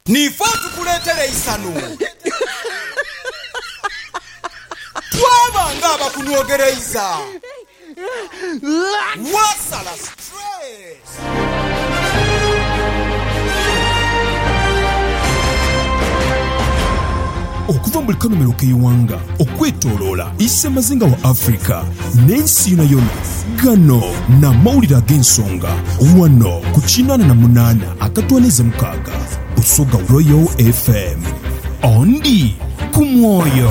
Niife otukuleetera eisanhu. Twaba ng'abakunwogereiza. Waasala stress. Okuva mu buli kanhumiro k'eighanga. okwetoloola isemazinga wa Africa n'ensi yonayona. Gano n'amawulire ag'ensonga wano ku kinaana na munaana akatwaniiza mukaaga Busoga Royal FM. Ondi ku mwoyo.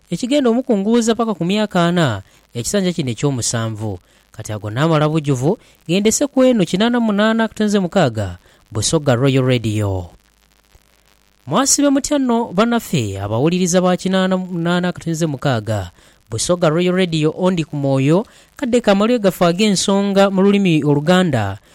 Ekigenda omukunguuza paka ku myaka ana, ekisanja kino eky'omusanvu. Kati ago naamala bujuvu, ghendese ku eno kinaana munaana akutenze mukaaga, Busoga Royal Radio. Mwasibe mutya no banafe abawuliriza ba kinaana munaana akutenze mukaaga, Busoga Royal Radio Ondi ku mwoyo, kadde ka malwegafo ag'ensonga mu lulimi oluganda,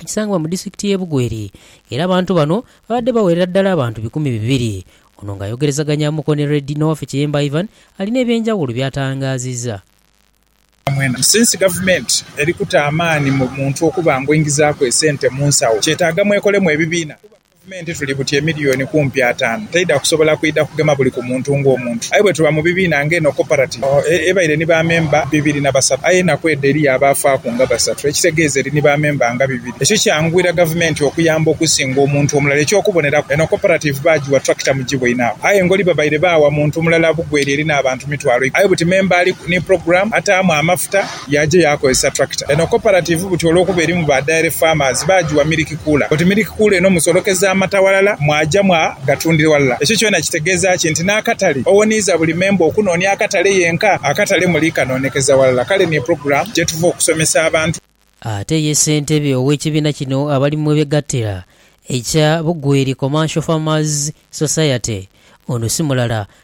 ekisangibwa mu disitulikiti y'e Bugweri era abantu bano babadde bawerera ddala abantu bikumi bibiri. Ono ng'ayogerezaganyamuko ni Red n'owaffe Kiyemba Ivan alina eby'enjawulo by'atangaazizza. Mwena. Since gavumenti eri kuta amaani mu muntu okuba ng'oingizaaku esente mu nsawo, kyetaaga mwekolemu ebibiina kuba. Gavumenti tuli buti emiliyoni kumpi ataanu teidha kusobola kwidha kugema buli ku muntu ng'omuntu. Aye bwetuba mu bibiina nga eno Cooperative ebaire ni ba memba bibiri na basatu aye enaku edho eriyo abaafaaku nga basatu ekitegeeza eri ni ba memba nga bibiri. Ekyo kyanguyira Gavumenti okuyamba okusinga omuntu omulala. Eky'okuboneraku, eno Cooperative baagiwa tractor mu gibwaine agho aye ngoli babaire baawa muntu mulala bugweri eri n'abantu mitwalo ikumi aye buti memba ali ni program ataamu amafuta, Yaja yaakozesa tractor eno cooperative buti olwokuba erimu ba dairy farmers baajiwa milk cooler oti milk cooler eno musolokeza amata ghalala mwaja mwa gatundira ghalala ekyo kyona kitegeeza ki nti n'akatale owoniiza buli member okunoonia akatale yenka akatale muli kanoonekeza ghalala kale niyo program gyetuva okusomesa abantu. Ate ye ssentebe ow'ekibiina kino abali mwebegattira ekya Bugweri Commercial Farmers Society ono si mulala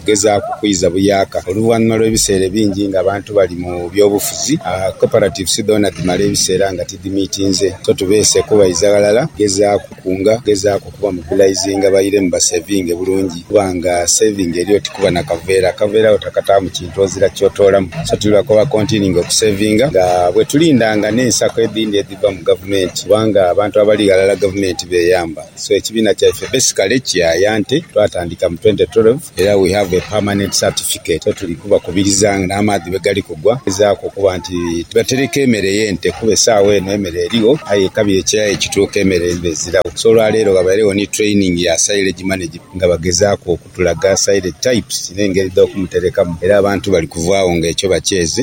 kugezaaku kwiza buyaaka. Oluvanhuma lw'ebiseera ebingi nga abantu bali mu byobufuzi, cooperatives dhoona dhimala ebiseera nga tidhimiitinze. So tubeese kubaiza ghalala kugezaaku kunga, kugezaaku kubamobilizinga bairemu basevinge bulungi kuba nga saving eri oti kuba na kaveera. Akaveera agho takataamu kintu ozira ky'otoolamu. So tuli lwa kuba continuing okusevinga nga bwetulinda nga n'ensako edhindi edhiva mu gavumenti kubanga abantu abali ghalala gavumenti b'eyamba. So ekibiina kyaife basically kiyaya nti twatandika mu twenty twelve era we have a permanent certificate so tuli kubakubiriza nga n'amaadhi bwegali kugwa okugezaku okuba nti tubatereka emere y'ente kuba esaawa eno emere erigho aye ekabira ekyayi ekituuka emere niba eziragho so olwaleero ghabairegho ni training ya silage management nga bagezaaku okutulaga silage types n'engeri dh'okumuterekamu era abantu bali kuvaagho nga ekyo bakyeze.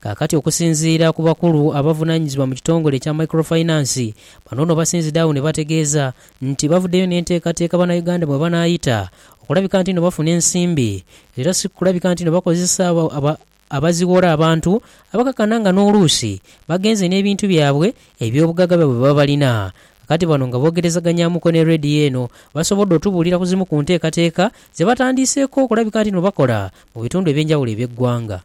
Kaakati okusinziira ku bakulu abavunaanyizibwa mu kitongole ekya Micro Finance, bano ono basinzidde agho ne bategeeza nti bavuddeyo n'enteekateeka Bannayuganda mwe banaayita okulabika nti no bafuna ensimbi era si kulabika nti no bakozesa abaziwora abantu abakakana nga n'oluusi bagenze n'ebintu byabwe eby'obugagga bwe baba balina. Kaakati bano nga boogerezaganyaamuko ne Radio eno basobodde otubuulira ku zimu ku nteekateeka ze batandiiseeko okulabika nti no bakola mu bitundu eby'enjawulo eby'eggwanga.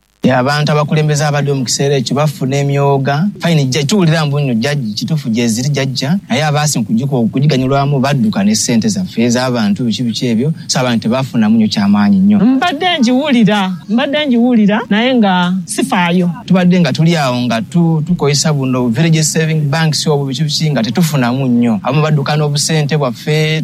Aye abantu abakulembeze abaliwo mu kiseera ekyo bafuna emyooga. Faini jija jiwulira mbu inho jagi kituufu gyeziri jagya, aye abaasi mu kugikwa oku kugiganyulwamu badduka ne sente zaffe, ez'abantu, biki biki ebyo, so abantu tebafunamu nyo kya maanyi nyo. Mbadde ngiwulira, mbadde ngiwulira naye nga sifaayo. Tubadde nga tuli agho nga tu, tukozesa buno bu village saving banks obwo biki biki nga tetufunamu nyo. Abamu badduka n'obusente bwaffe.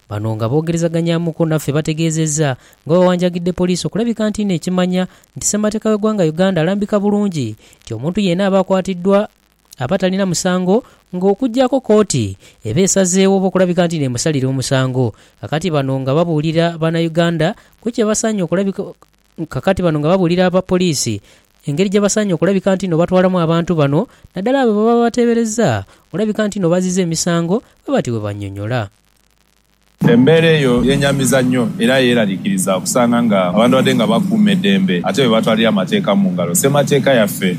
Bano nga boogerezaganyamuku naffe bategeezezza nga bwebawanjagidde poliisi okulabika nti n'ekimanya nti Ssemateeka w'eggwanga Uganda alambika bulungi nti omuntu yeena aba akwatiddwa aba talina musango nga okuggyako kkooti eba esazeewo oba okulabika nti n'emusalira omusango kakati bano nga babuulira Bannayuganda ku kyebasaanye okulabika kakati bano nga babuulira aba poliisi engeri gyebasaanye okulabika ntino batwalamu abantu bano naddala abo bebaba bateeberezza olabika ntino bazizza emisango bwe batyo bwe bannyonyola. Embeera eyo yeenyamiza nnyo era yeeraliikiriza okusanga nga abantu babadde nga bakuuma eddembe ate be batwalira amateeka mu ngalo. Ssemateeka yaffe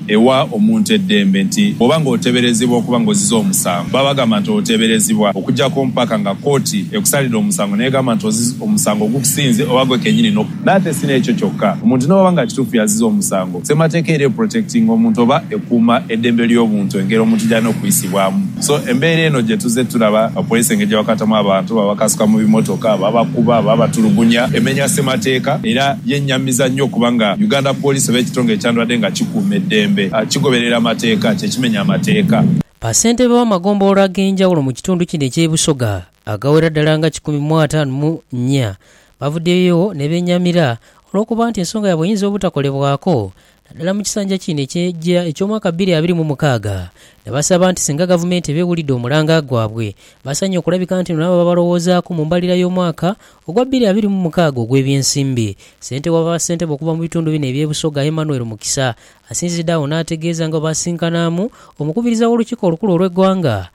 ewa omuntu eddembe nti bw'oba ng'oteeberezebwa okuba ng'oziza omusango, baba bagamba nti oteeberezebwa okuggyako mpaka nga kkooti ekusalidde omusango n'egamba nti omusango gukusinze oba gwe kennyini. Nate si n'ekyo kyokka, omuntu n'obwaba nga kituufu yaziza omusango, Ssemateeka era eprotectinga omuntu oba ekuuma eddembe ly'obuntu engeri omuntu gy'alina okuyisibwamu. So, embeera eno gye tuzze tulaba nga poliisi engeri gye bakwatamu abantu, babakasuka mu bimotoka, babakuba, babatulugunya, emenya Ssemateeka era yennyamiza nnyo okuba nga Uganda Police oba ekitongole ekyandibadde nga kikuuma eddembe kigoberera amateeka, kye kimenya amateeka. Bassentebe b'amagombolola ag'enjawulo mu kitundu kino eky'e Busoga Agawera ddala nga kikumi mu ataanu mu nnya bavuddeyo ne beenyamira olw'okuba nti ensonga yaabwe eyinza obutakolebwako naddala mu kisanja kino eky'eggya eky'omwaka bbiri abiri mu mukaaga ne basaba nti singa Gavumenti eba ewulidde omulanga gwabwe basanye okulabika nti nabo babalowoozaako mu mbalirira y'omwaka ogwa bbiri abiri mu mukaaga ogw'ebyensimbi. Ssente wa Bassentebe okuva mu bitundu bino eby'e Busoga Emmanuel Mukisa asinzidde agho n'ategeeza nga bwe basisinkanaamu Omukubiriza w'Olukiiko olukulu olw'eggwanga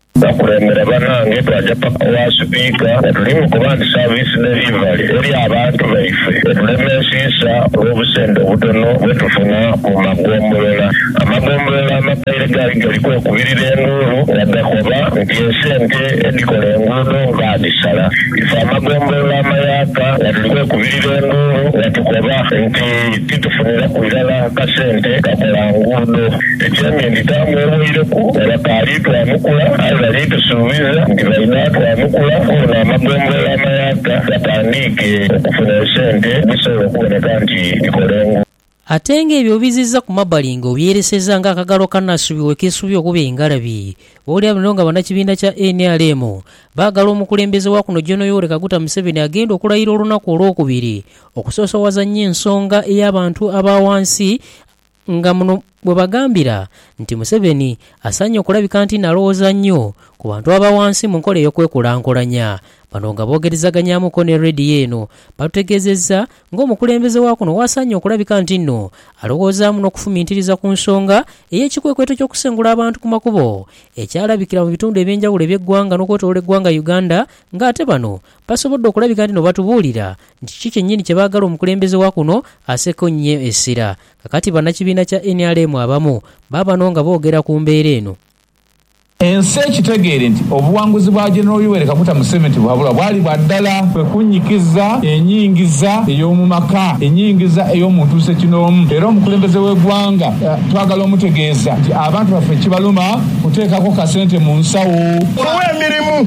Bakulembera banange twaja paka wa sipiika nga tuli mukoba nti service delivery eri abantu baife etulemesiisa olw'obusente obutono bwetufuna mu magombolola. Amagombolola amakaire gaali gali kwekubirira enduulu nga gakoba nti esente edhikola enguudo baadhisala. Ife amagombolola amayaka nga tuli kwekubirira enduulu nga tukoba nti. Titufuniraku irala kasente kakola nguudo. Ekyemye nti taamu eweireku bakaali twanukula aye bali tusuubiza nti bainha twanukula koono amagombolola amayaaka gatandiike okufuna esente edhisobola okuboneka nti dhikola enguudo. Ate nga ebyo obiziza ku mabali nga obyereseza nga akagalo akanasubirwa ekesubirwa okuba engalabi. Bwolya bino nga banakibiina kya nrm bagala omukulembeze wakuno Gen Yoweri Kaguta Museveni agenda okulayira olunaku olwokubiri okusoosowazannya ensonga y'abantu aba wansi nga muno bwe bagambira nti Museveni asaanye okulabika nti n'alowooza nnyo ku bantu aba wansi mu nkola ey'okwekulankulanya. Bano nga boogerezaganyamuko ne Radio eno batutegeezezza ng'omukulembeze wa kuno w'asaanye okulabika nti nno alowoozaamu n'okufumintiriza ku nsonga ey'ekikwekweto ky'okusengula abantu ku makubo ekyalabikira mu bitundu eby'enjawulo eby'eggwanga n'okwetoloola eggwanga Uganda ng'ate bano Basobodde okulabika nti n'obatubuulira nti kiki kyennyini kye baagala omukulembeze wa kuno aseeko nnyo essira. Kakati bannakibiina kya nrm abamu baabano nga boogera ku mbeera eno. Ensi ekitegeere nti obuwanguzi bwa General Yoweri Kaguta Museveni tibuhabulwa bwali bwa ddala. Kwe kunnyikiza enyingiza ey'omu maka, enyingiza ey'omu ntuusa ekinoomu era omukulembeze w'eggwanga twagala omutegeeza nti abantu baffe kibaluma kuteekako kasente mu nsawo. Omuwa emirimu.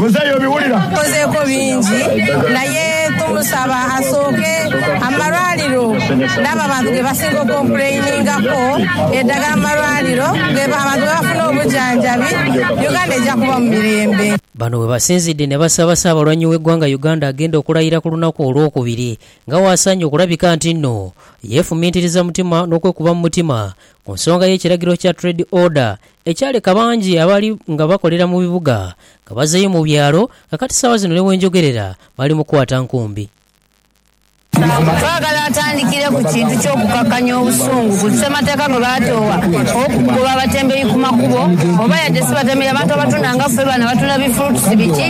Tukozeeko bingi naye tumusaba asooke amalwaliro n'abo abantu ge basinga okompuleiningaku edagala mu malwaliro abantu ghe bafuna obujanjabi, Uganda eja kuba mu mirembe. Bano webasinzidde nebasaba Ssaabalwanyi w'eggwanga Uganda agenda okulayira ku lunaku Olwokubiri Nga waasaanye okulabika nti inho yeefumiitiriza mutima n'okwekuba mu mutima ku nsonga y'ekiragiro kya Trade Order ekyaleka bangi abaali nga bakolera mu bibuga nga bazeeyo mu byalo nga kati saawa zino ni bwenjogerera bali mu kwata nkumbi. Twagala atandikire ku kintu ky'okukakanya obusungu ku ssemateeka gwe baatoowa ow'okugoba abatembeyi ku makubo oba yadde si batembeyi abantu abatunda nga ffe bano abatunda bi fruits biki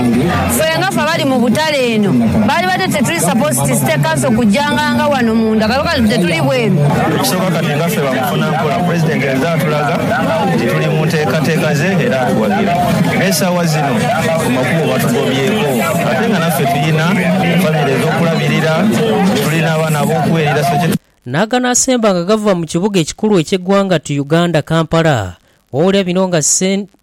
ffe nga ffe abali mu butale eno baalibadde Supposed state council kujanganga wano munda kale kati tetuli bweru. Ekisooka kati nga ffe bamufuna mpola president aze atulaga nti tuli mu nteekateeka ze era atuwagira era esaawa zino ku makubo batugobyeeko ate nga naffe tulina famire ez'okulabirira, tulina abaana ab'okuweerera so kye N'aganaasemba nga gava mu kibuga ekikulu eky'eggwanga tu Uganda, Kampala. Wowulira bino nga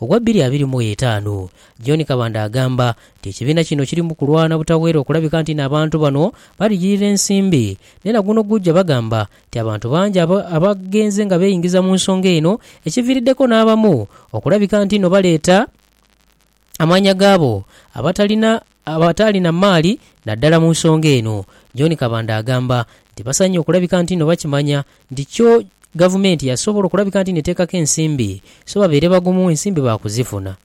Ogwa bbiri abiri mu etaanu. John Kabanda agamba nti ekibiina kino kiri mu kulwana butaweera okulabika nti n'abantu bano baligirira ensimbi. Naye na guno gujja bagamba nti abantu bangi abagenze nga beeyingiza mu nsonga eno ekiviiriddeko n'abamu okulabika nti no baleeta amaanya gaabo abatalina Abataali na maali naddala mu nsonga eno, John Kabanda agamba nti basaanye okulabika nti no bakimanya nti kyo Gavumenti yasobola okulabika nti neteekako ensimbi so babeere bagumu ensimbi baakuzifuna.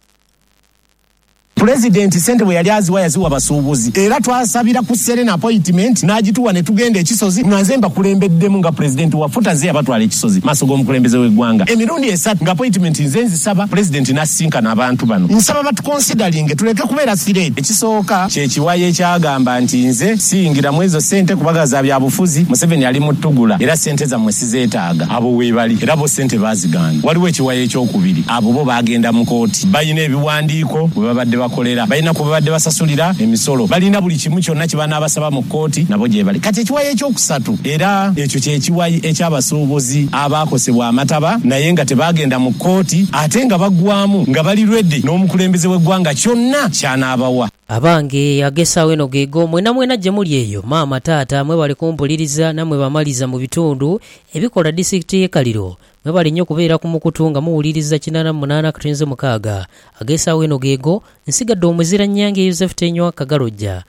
Pulezidenti ssente bwe yali aziwa yaziwa basuubuzi era twasabira ku Serena apoyitimenti n'agituwa ne tugenda e Kisozi nga nze mbakulembeddemu nga Pulezidenti wa FUTA ze yabatwala e Kisozi mu maaso g'omukulembeze w'eggwanga emirundi esatu ng'apoyitimenti nze nzisaba Pulezidenti n'asisinkana abantu bano. Nsaba batukonsidalinge tuleke okubeera sire. Ekisooka kye kiwayi ekyagamba nti nze siyingira mu ezo sente kubaga za byabufuzi, Museveni ali mu ttugula era sente zammwe sizeetaaga. Abo weebali era bo sente baazigaana. Waliwo ekiwayi ekyokubiri, abo bo baagenda mu kooti. Balina ebiwandiiko we babadde bakolera, balina kwe babadde basasulira emisolo, balina buli kimu kyonna kye banaabasaba mu kooti nabo gyebali. Kati ekiwayi ekyokusatu. Era ekyo kye kiwayi eky'abasuubuzi abaakosebwa amataba naye nga tebaagenda mu kooti ate nga baggwaamu nga bali lwedi n'omukulembeze w'eggwanga kyonna ky'anaabawa. Abange agesagho eno geego, mwenamwena gye muli eyo, maama, taata, mwebale kumpuliriza, namwe ba maliza mu bitundu ebikola disitikiti y'e Kaliro, mwebale nnyo kubeera ku mukutu nga muwuliriza kinaana mu munaana akatunzi mukaaga. Agesagho eno geego, nsigadde omuzira Nnyange Yozefu Tenywa Kagalojja,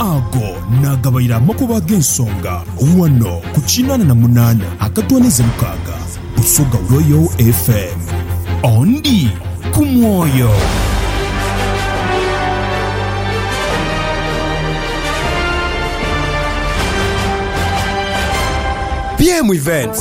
Ago naagabaire amakubo ag'ensonga ghano ku kinaana na munaana akatwaniza mukaaga Busoga Royal FM. Ondi ku mwoyo. BM Events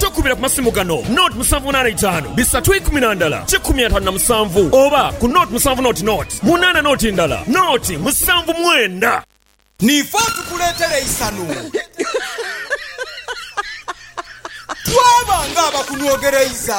Tokubira ku masimu gano, noti musanvu munaana itaanu bisatu ikumi na ndala kikumi ataanu na musanvu oba ku noti musanvu noti noti munaana noti ndala noti musanvu mwenda. Niife otukuleetera eisanhu. Twaba ng'abakunwogereiza.